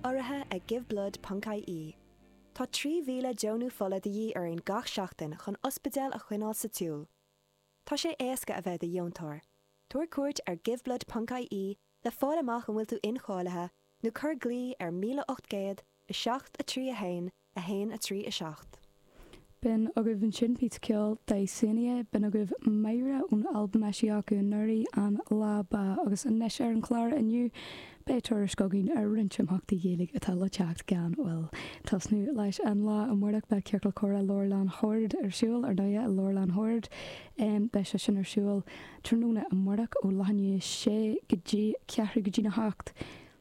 Urraithe ag Give Blood ponc IE, Tá 3,000 deonú fola de dhíth orainn gach seachtain chun ospidéil a choinneáil sa tsiúl. Tá sé éasca a bheith i do dheontóir. Tabhair cuairt ar Give Blood ponc IE le fáil amach an bhfuil tú incháilithe nó cuir glao ar 1800 7 3 1 1, 3, 7. B'in agaibh ansin píosa ceoil Dysania, b'in agaibh Myra ón albam a eisíodh acu anuraidh, An Lá Ba, agus anois ar an chlár inniu beidh tuairisc againn ar roinnt imeachtaí Gaeilge atá le teacht gan mhoill. Tosnú leis an lá amárach beidh Ciorcal Comhrá Leabharlann Shoird ar siúl, ar ndóighe, i Leabharlann Shoird. Beidh sé sin ar siúl tráthnóna amárach ó leath i ndiaidh a sé go dtí ceathrú go dtí na hocht.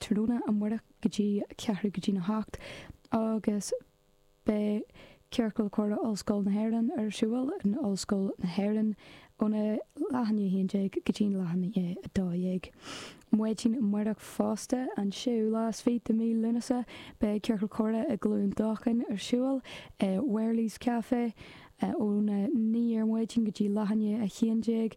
tráthnóna amárach go dtí ceathrú go dtí na hocht agus beidh Ciorcal Comhrá Ollscoil na hÉireann ar siúl in Ollscoil na hÉireann óna leath i ndiaidh a 11 go dtí an leath i ndiaidh a 12. Maidin amárach fosta, an séú lá is fiche de mí Lúnasa, beidh Ciorcal Comhrá i gCluain Dolcáin ar siúl i Wearley's Café ón a naoi ar maidin go dtí leath i ndiaidh a 11.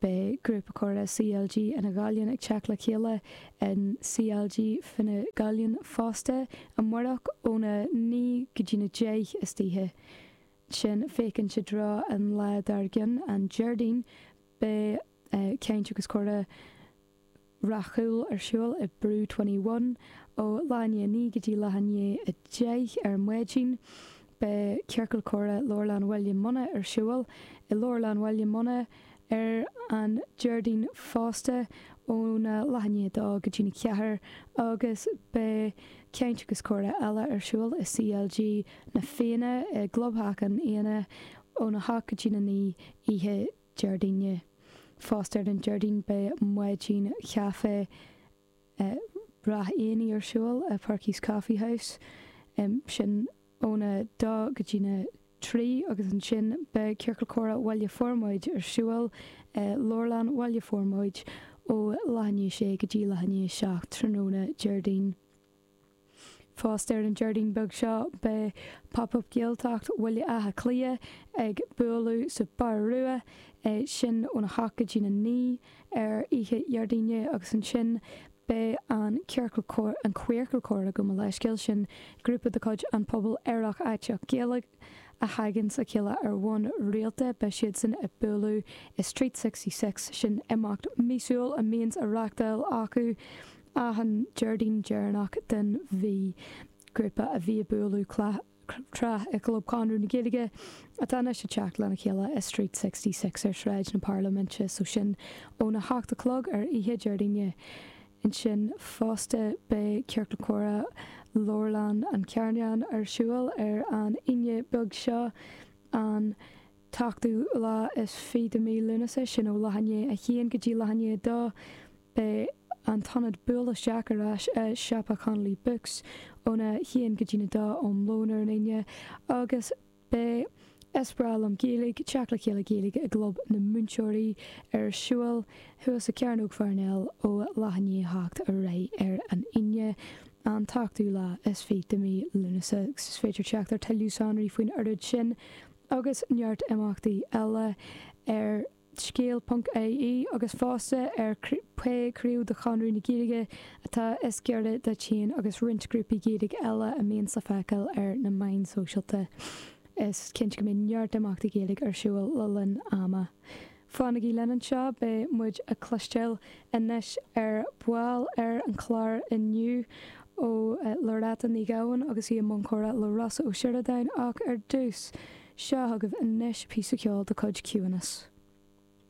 Beidh Grúpa Comhrá CLG Fhine Ghallainn ag teacht le chéile in CLG Fine Ghallainn fosta amáireach óna naoi go dtí na deich istoíche. Ansin féachaint i dtreo an lá dár gcionn, an Déardaoin. Beidh caint agus comhrá Ráth Cúil ar siúl i Brew Twenty One ó leath i ndiaidh a naoi go dtí leath i ndiaidh a deich ar maidin. Beidh Ciorcal Comhrá Leabharlann Bhaile Munna ar siúl i Leabharlann Bhaile Munna ar an Déardaoin fosta óna leath i ndiaidh a dó go dtí na ceathair agus beidh Caint agus Comhrá eile ar siúl i CLG Na Fianna i gClubtheach Na Fianna óna hocht go dtí na naoi oíche Déardaoine. Fosta ar an Déardaoin beidh Maidin Chaife Ráth Eanaigh ar siúl i Perky's Coffee House, sin óna dó go dtí na trí agus ansin beidh Ciorcal Comhrá Bhaile Formaid ar siúl i Leabharlann Bhaile Formaid ó leath i ndiaidh a sé go dtí leath i ndiaidh a seacht tráthnóna Déardaoin. Fosta ar an Déardaoin beag seo beidh Pop Up Gaeltacht Bhaile Átha Cliath ag bualadh sa Bar Rua, é sin ón a hocht go dtí na naoi ar oíche Dhéardaoine agus ansin beidh an Ciorcal Comhrá, An Queercal Comhrá gabh mo leithscéal, sin grúpa de chuid an pobal aerach aiteach Gaeilge a thaganns le chéile ar bhonn rialta, beidh siadsan ag bualadh i Street Sixty Six, sin imeacht míosúil a mbíonns á reachtáil acu. Ach an Déardaoin deireanach den mhí, grúpa a bhí ag bualadh tráth i gClub Chonradh na Gaeilge atá anois ag teacht lena chéile i Street Sixty Six ar Shráid na Parlaiminte, so sin óna hocht a chlog ar oíche Déardaoine. Ansin fosta beidh Ciorcal Comhrá Leabharlann an Chearnán ar siúl ar an Aoine beag seo, an t-ochtú lá is fiche de mhí Lúnasa, sin ó leath i ndiaidh a haon go dtí leath i ndiaidh a dó. Beidh an t-ionad buail isteach ar ais i Siopa Connolly Books óna haon go dtí'n a dó um lón ar an Aoine agus beidh Is Breá Liom Gaeilge, Teacht le Chéile Gaeilge i gClub na Múinteoirí ar siúl thuas i Cearnóg Pharnell ó leath i ndiaidh a hocht ar aghaidh ar an Aoine, an t-ochtú lá is fiche de mhí Lúnasa. Is féidir teacht ar thuilleadh sonraí faoin oiread sin agus neart imeachtaí eile ar. scéal ponc ie agus fosta ar pé craobh de Chonradh na Gaeilge atá is giorra duit féin agus roinnt grúpaí Gaeilge eile a mbíonns le feiceáil ar na meáin sóisialta is cinnte go mbeidh neart imeachtaí Gaeilge ar siúl le linn ama. Fanaigí linn anseo, beidh muid ag cloisteáil anois ar ball ar an chlár inniu ó Loretta Ní Ghabháin agus í i mbun comhrá le Rossa Ó Sioradáin ach ar dtús, seo chugaibh anois píosa ceoil de chuid Ciúnas.